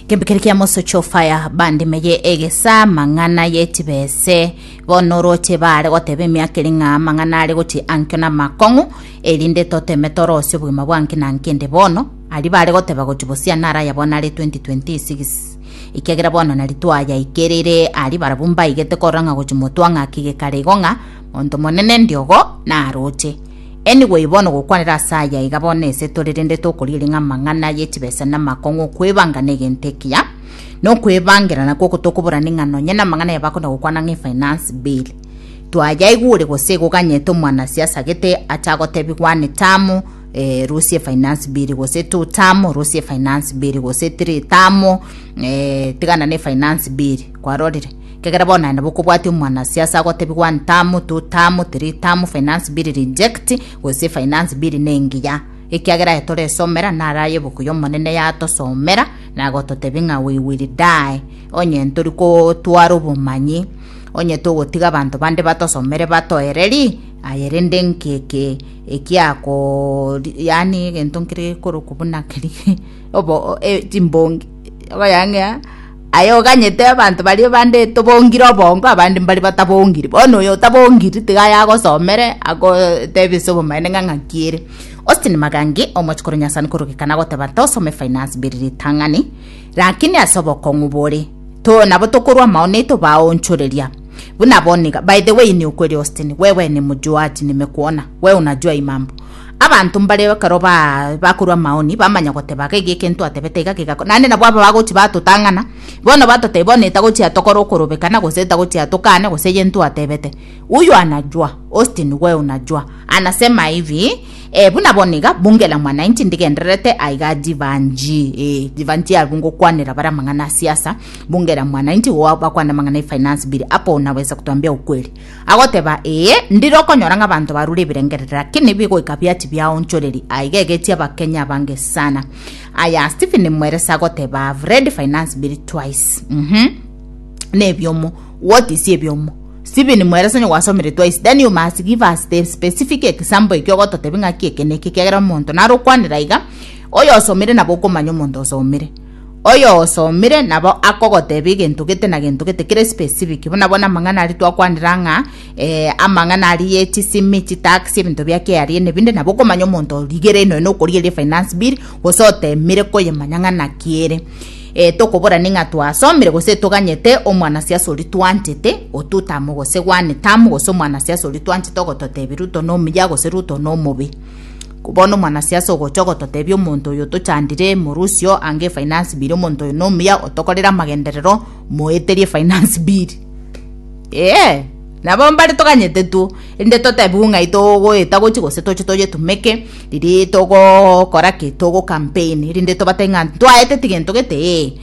Kembikeri kia mosocho fire bandimeye egesa mang'ana yetibese bono roche bare goteba emiaka eri ng'a mang'ana are gochi ankio na makong'u erinde toteme torosie obogima bwanki na nkende bono ari bare goteba gochi bosia nara ya bono are 2026 ikiagera bono nari twayaikerire ari barabwo mbaigete korora ng'a gochi motwa ng'aki gekare igo ng'a monto monene ndiogo naroche Enigo eye bono gokwanera ase aya iga bono ese tore rende tokorieria ng'a amang'ana ye chibesa namakong'u okwebanga negento ekiya nokwebangera nakwo oko tokoborani ng'a nonye namang'ana ya bakunda gokwana ng'a efinance bill twayaigure gose igo ganyete omwanasiasa gete ache agotebi gwane tamu eh, rusia efinance bill gose two tamu rusia efinance bill gose three tamu eh, tigana na efinance bill Kwarorire, ekiagera bono naende bokobwatia omwanasiasa agotebigwa ntamoto, tamotiri, tamu finance bill reject, gose finance bill nengiya. Ekiagera aye toresomera nare aye ebuku y'Omonene yatosomera na agototebi ng'a we will die. Onye ntori kotwara obomanyi, onye togotiga abanto bande batosomere batoereri, aye rende nki eke ekiako yani egento nkere korokwa buna keri obo e, chimbongi okoyang'ea Aye oganyete abanto baria bande tobongire obongo, abande mbaria batabongiri. Bono oyo otabongiri tiga aye agosomere, agotebie ase obomaene ng'a ng'aki ere. Austin Magangi, omochikoro o Nyasani korogeka nagoteba, Tosome finance biri ritang'ani, rakini ase obokong'u bore, to nabo tokorwa amaono aito baonchoreria. Buna bono iga. By the way, niyo kweri Austin, wewe ni mjuaji, nimekwona. Wewe unajua hii mambo. Abanto mbare ekero baa bakorwa amaoni, bamanya goteba, gaki eke ntwatebete iga kegakora, naende nabo aba bagochia batotang'ana, bono batotebia bono eye tagochia tokora okorobekana, gose tagochia tokane gose eye ntwatebete. Huyu anajua, Austin wewe unajua, anasema hivi, eh, buna bono iga, bunge la mwananchi ndigendererete aiga jibanji, eh, jibanji abwo ngokwanera bare amang'ana a siasa, bunge la mwananchi igo bakwane amang'ana e finance bill, hapo unaweza kutuambia ukweli. Agoteba, Ee, ndire okonyora ng'a abanto barure ebirengerero, lakini ebigoika bia tibiaonchoreri. Aiga egetie Abakenya abange sana. Aya Stephen Mweresa agoteba, I've read Finance Bill twice. Mhm. Ne ebiomo. What is ebiomo? Stephen Mweresa onye gwasomire twice, then you must give us the specific example ekio ogototebi ng'aki eke neke kiagera omonto naro okwanera iga, oyosomire nabo okomanya omonto osomire. Oyosomire nabo akogotebia egento gete na gento gete kere specific buna bono amang'ana aria twakwanera ng'a eh, amang'ana aria ye chisimi chitax ebinto bia KRA nebinde nabo okomanya omonto origere enoe nokorieria finance bill gose otemire koyemanya ng'a naki ere eh, tokoborani ng'a twasomire gose toganyete omwana siasa oria twanchete otutamu gose one tamu gose omwana siasa oria twanchete ogototebia ruto nomuya gose ruto nomobe Bono omwanasiasa ogocha ogototebia omonto oyo tochandire morusio anga efinance bill omonto oyo nomuya otokorere amagenderero moeterie efinance bill ee nabo mbare toganyete two erinde totebiwe ng'ai togoeta gochia gose toche toyetumeke riria togokora ki togo campaign erinde tobatebie ng'a ntwaeteti gento gete ee.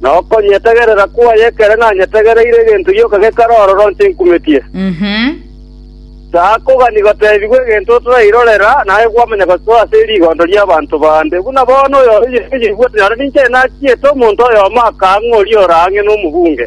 na okonyetegerera kwaye ekero nanyetegereire egento gioka gekare ororo ntinkumetie. Saako gani gotebigwa egento otorairorera, naye kwamanya gosoa ase rigondo ri'abanto bande. Buna bono oyo oria oyebwate nyore ninche nachiete omonto oyomo akang'a oria oraang'e nomogunge.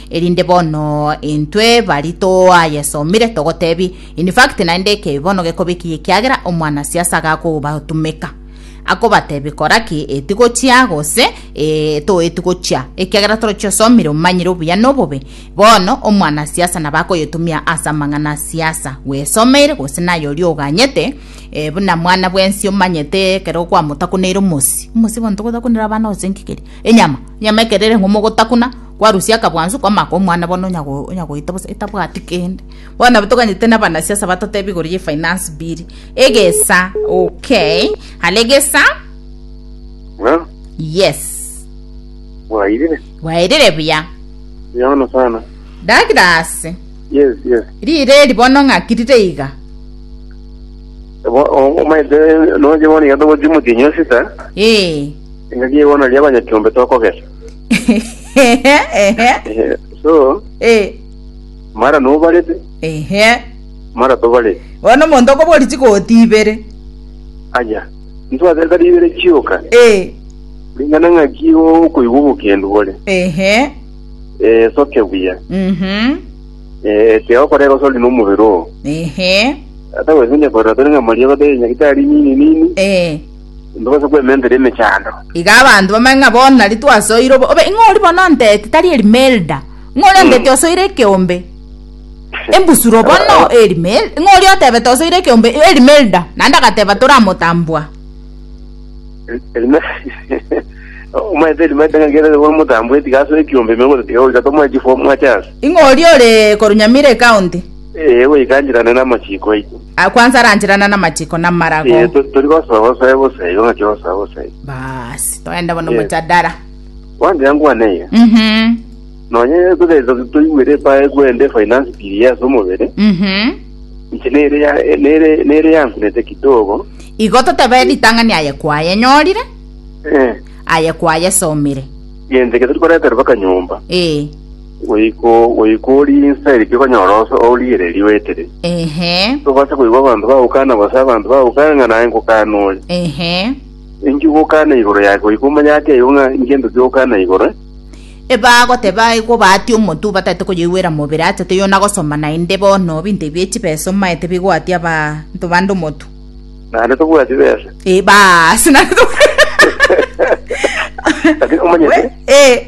Erinde bono intwe bari toayesomire togotebi in fact naende ekebi bono gekobekiya ekiagera omwana siasa agakobatumeka akobatebi koraki eti gochia gose e, toeti gochia ekiagera torochi osomire omanyire obuya nobobe bono omwana siasa nabakoyetumia ase amang'ana siasa wesomeire gose naye ori oganyete e, buna mwana bwensi omanyete ekero kwamotakuneire omosi omosi bono togotakunera abana gose nkikeri enyama enyama ekerere ng'omogotakuna Kwarusia akabwansu kw'amaka omwana bono onya onya goita bosa etabwati kende. Bono nabo toganyete na abanasiasa batotebi igoro ye finance bill. Egesa okay. Hare egesa. Ng'a Yes. mwairire. Bwaerire buya. Yaona sana. Douglas. Yes, yes. Rire eri bono ng'aki rire iga. Bo- o- Omaete noje bono iga togochi motinyo sita. Ee. Engaki eye bono ria abanyakiombe tokogesa. Ehe, ehe, Eh, so eh, mara nobarete ehe. mara tobarete bono omonto okobori chigoti ibere aya ntwateta ribere chioka Eh, ringana ng'aki okoigwa obokendu bore ehe Eh, soke buya mhm, Eh, tea okorera osori nomobere oo ehe ata gwesenya korera tore ng'a mariaba tore nyagitari nini nini eh, Intobasa kwementera emechando. Iga abanto bamanye ng'a bono nari twasoire obo obe ing'o ori bono onteti tari Elimelda ing'o ori onteti osoire ekeombe embusuro bono Elimel ing'o ori otebete osoire ekeombe Elimelda naende agateba toramotambua Elime- Omanyete Elimelda ng'a kere nigo omotambue tiga asoe ekiombe ime gose tiga goika tomoe chifu mwachasi. ing'o ori ore korunyamira ecounty Ee, goika anchirane namachiko aito. Ah, kwanza aranchirana namachiko namarago. Ee, to- tori gosoa gosoa ebusa igo ng'aki gosoa busa igo. Basi, toende bono Yes. mojadara. Wanchira nkwane iga. Mhm. Nonye togeza toigwere epa egwende finance bill yase omobere. Mhm. Inche nere ya nere nere yankunete kidogo. Igo totebe ritang'ani aye kwaye nyorire, Eh. aye kwaye somire. Genteke tori koreterwa kanyomba. Eh. Goiko goika orie inse eri tikonyora oso ourigereria oetire. Ehe, Tobasa koigwa abanto bagokana gose abanto bagokana ng'a naye nkokana oyo. ehe. Inki ogokana igoro yake goika omanye ake igo ng'a ngento ki ogokana igoro? Ebagoteba igo baatie omotu bataete koyoigwera mobere acha teiyo na gosoma naende bono binto ebi echibesa omaete bigoatia abanto bande omotu. Naende tobwati besa. Eh, baas, naende to- Lakini omanyete? Eh,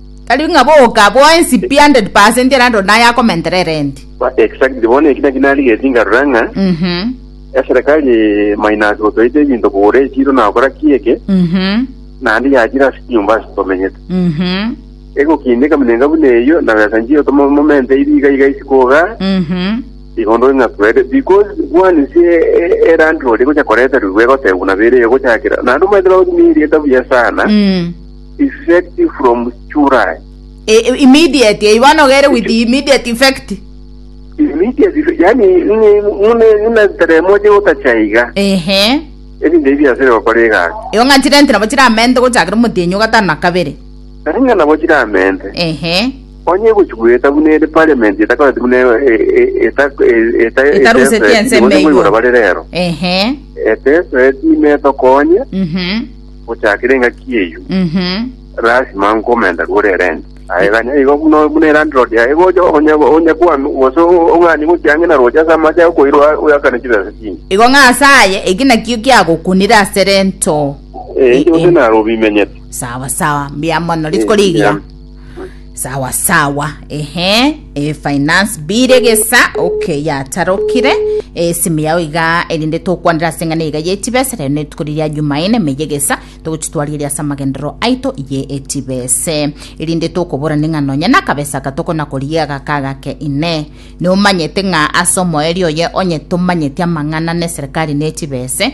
Tari ng'a boka bwensi 100% erando naye akomentera erenti. Ba- Exactly, bono eki naki narigeti nkarora ng'a Mhm. eserekari minus gotoita ebinto kogora echiro na gokora ki eke, Mhm. naende yachire ase chinyomba ase tomenyete. Mhm. Egokina ekaminenka buna eyio, na besa nchiyo tomomente ibi iga iga isiko iga, Mhm. igo ndore ng'a kwere, because bwani se e- erandi rori gocha koreterwa igo egotebwa buna bere eyo gochakera, naende omanyete bagotumia erieta buya sana, Mm. effect from July. E- e- immediate eh, bono ogere with immediate effect Immediate, yani ni- mune muna teremo je gotachaiga. ehe Ebinto ebi biasire gokora egasi. igo ng'a chire nti nabo chiramente gochakera omotienyi o gatano na kabere Nainga nabo chiramente. ehe Onye egochi gweta buna ere parliament etakoreti buna e- e- eta- e- eta- Etarusetie eteseti, ensemo nigo eywo. igora bare rero. ehe Eteseti imetokonye mhm gochakera engaki eyio Mhm. lasima nkomenta rwore erenti aye ganya igo buna buna erandrod yaye gocha onye onye kwanu gose ong'ani gochia ang'e na roche ase amache akoirwa oyakane chibesa chinde igo ng'asaye eki nakio kiagokunire ase rento Eh, inche gose naro obimenyete sawa sawa mbuya mono rituko Eh, rigiya mbuya. sawa sawa ehe e finance bill egesa okay yatarokire esimu yao iga erinde tokwanera ase eng'ana iga yetibesa rero netuko riria jumaine meye gesa togochitwarigeria ase amagendero aito ye etibese erinde tokobora ning'a nonya nakabesa aka tokona koria gaka agake ine nomanyete ng'a ase omoerio oye onye tomanyeti amang'ana na eserikali netibese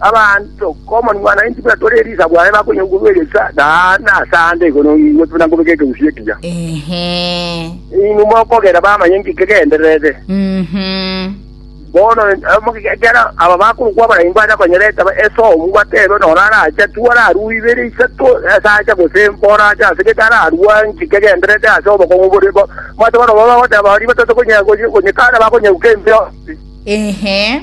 Abanto Common 190 buna tore Elisa bwane bakonyaugurwa egesa naende ase aande igoro noigwe buna nkobeka ekegusii ekiya. Ehe. Inwe mokogera bamanye nki kegendererete. Mhm. Bono eh, ekero aba bakorokwa abarenge bacha konyora etaba esomu batebe nora arache tu ararue ibere isato ase acha gose mpora acha ase gete ararua nki kegendererete ase obokong'u bore bo mate bono baba bagoteba baria batatokonya konyekana bakonyeuka embeo. Ehe.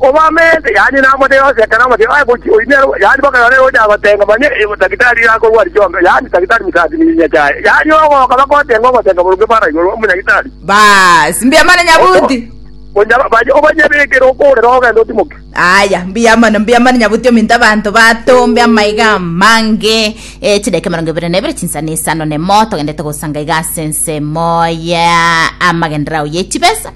Obw'amaizi, yaani namotwe yonsi ekero amotwe aye gochia oimia, yaani mpaka ekero eroche agotenga manya daktari iga akorwa aria chionto, yaani daktari mosaasi nyinya chiaye, yaani ogoka bagotenga ogotenga boronge bw'are igoro omonyagitari. Baas, mbuya mono nyabuti. Onya baye obanyebekere okorera ogende otimoke. Aya, mbuya mono, mbuya mono nyabuti ominto abanto batombe amaiga amange. Eh, chideke mirongo ibere na ibere chinsano isano nemo togendete gosanga iga ase ensemo ya amagenderao ye chibesa.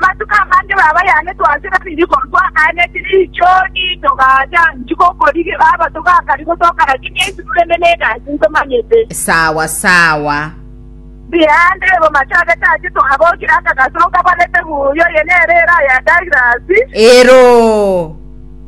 Amatuko amange baba yane twasera riko ntwagaaneti richoni togacha inchi gokorigia baba togakari gotoka rakini ensi rurende negasi ntomanyete. Sawa sawa. Rihande bo machagete ache twagokire akagaso nkabarete buya oye nere era ya Douglas. Ero.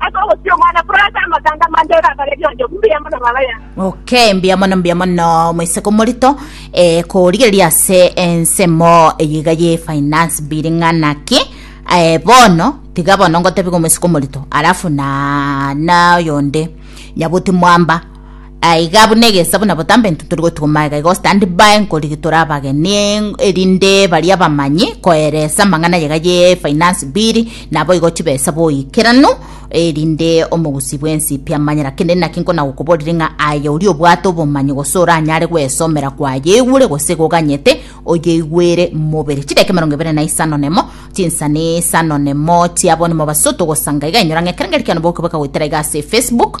Ase ogochia omwana korwa ase amatanga amange oragarerie onde obuya mbuya mono baba yaye. Okay, mbuya mono mbuya mono moiseke omorito eh, korigereria ase ensemo eye iga ye finance bill ng'ana ki eh, bono tiga bono ngotebiga omoiseke omorito alafu na na oyonde nyabuti mwamba aiga buna egeesa buna botambe intwe tori gotigwa magega iga stand by nkorigi tore abageni erinde baria bamanyi koeresa amang'ana yega ye finance bill nabo igo chibesa boikeranu erinde omogusi bwensi pi amanyera kende naki nkona gokoborire ng'a aye ori obwate obomanyi gose oranyare gwesomera kwayeigure gose goganyete oyeigwere mobere chidaki emerongo ebere na isano nemo chinsani isano nemo chiabo nimobaso togosanga iga enyora ng'a ekero ngerekiano boke bokagoetera iga ase efacebook